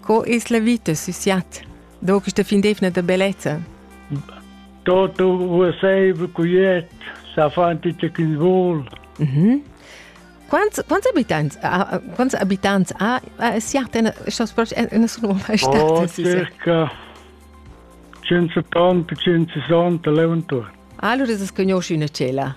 Co es la vita sü siat? Do questa fin d'eivna da bellezza? Tutto uaseiva cuiet, sa fanti ce chi vol. Mm -hmm. Quants, quants abitants, ha, quants abitants ha a siat in, in sun Roma stata? Oh, circa 180-160 leuentor. Allora es conosci una cela?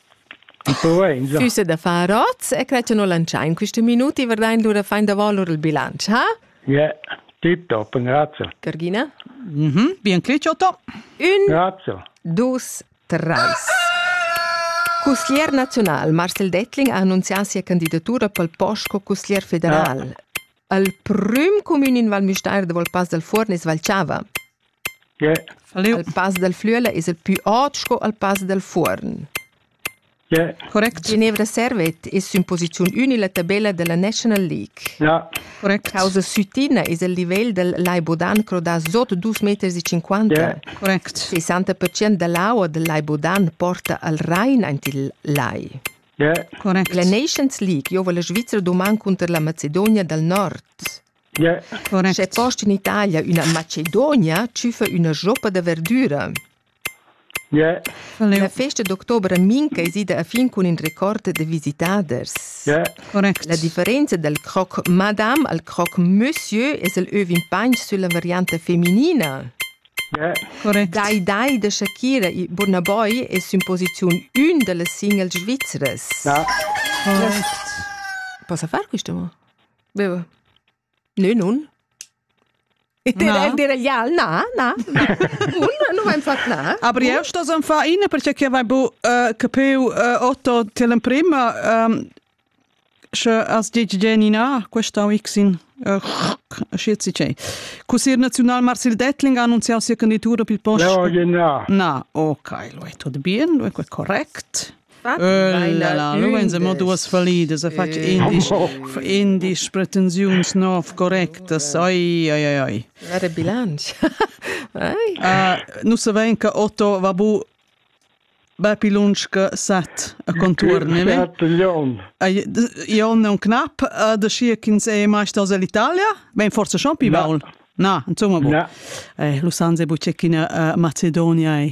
Füsse da far oz e quai tenor lantschà in questi minuti verdain lura fain da valur il bilancio, ha? Yeah, tip top, grazie. Cargina? Mm -hmm. Bien clic, Otto. Un, grazie. dus, treis. Cusglier naziunal Marcel Dettling ha annunzià sia candidatura pel post co cusglier federal. Ah. Al prüm cumün in Val Müstair de Volpas dal Fuorn es Valchava. Il pass dal Flüela es il pü ot sco il pass dal Fuorn. Correct. Ginevra Servet es sün posiziun ün illa tabella da la National League. Ja. Correct. Causa Sütina es il livel del Lai Bodan crodà sot 2 meters e 50. Yeah. Correct. 60% da l'aua del Lai Bodan porta al Rhein aint il lai. Yeah. Correct. La Nations League giova la Svizra doman cunter la Macedonia dal Nord. Sche post in Italia üna Macedonia tschüfa üna joppa da verdüra. La festa d'october a Minca es ida a fin cun ün record da visitaders. La differenza dal croc madame al croc monsieur es el övin pagn sülla varianta feminina. Dai dai da Shakira e Burna Boy es sün posiziun ün da las singles svizras. Possa far quista mo? Beva. Nö, nun. Na. Ja, na, na. Una nu vain fat na. Aber io sto zan fa ina perché che vai bu uh, capiu uh, Otto til in prima um, sche as dici Genina questa weeksin uh, schizi c'è. Così National Marcel Dettling ha annunziato sia candidatura per il posto. No, no. Na, ok, lo è tutto bien, lo è correct. Lu vein se mo duas fallidas, ha fatg indisch, indisch pretensiuns nov correctas. Ai, ai, ai, ai. Era bilanc. Nus savein che Otto va bu bepi lunsch che sat a contuorn, ne? Jon è un knap, da schi ch'ins è mai staus all'Italia, vegn forse schon pi baul. Na, insomma, bu. Lu san se bu che china Macedonia è.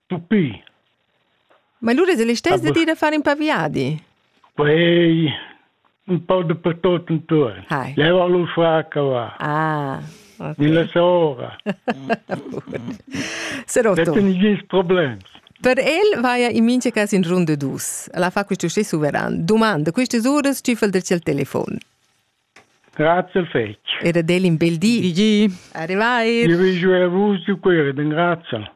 Tuppì. Ma lura es el istess de dir da far ün pa viadi? Quei un po' dappertut intuorn. Hai. Leva lu fraca va. Ah. Okay. Nella sora. Serò tu. Dette nigins problems. Per el vaia in mincha cas in rund dus. La fa questo stessu veran. Domanda, questas uras cifel del cel telefon. Grazie al fetg. Ed ad el in bel di. Di di. Arrivai. Io vi giù a vus di queri, den grazie.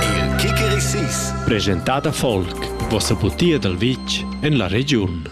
Il Kickerisis. Presentata folk. Vossa butia dal vitg en la regiun.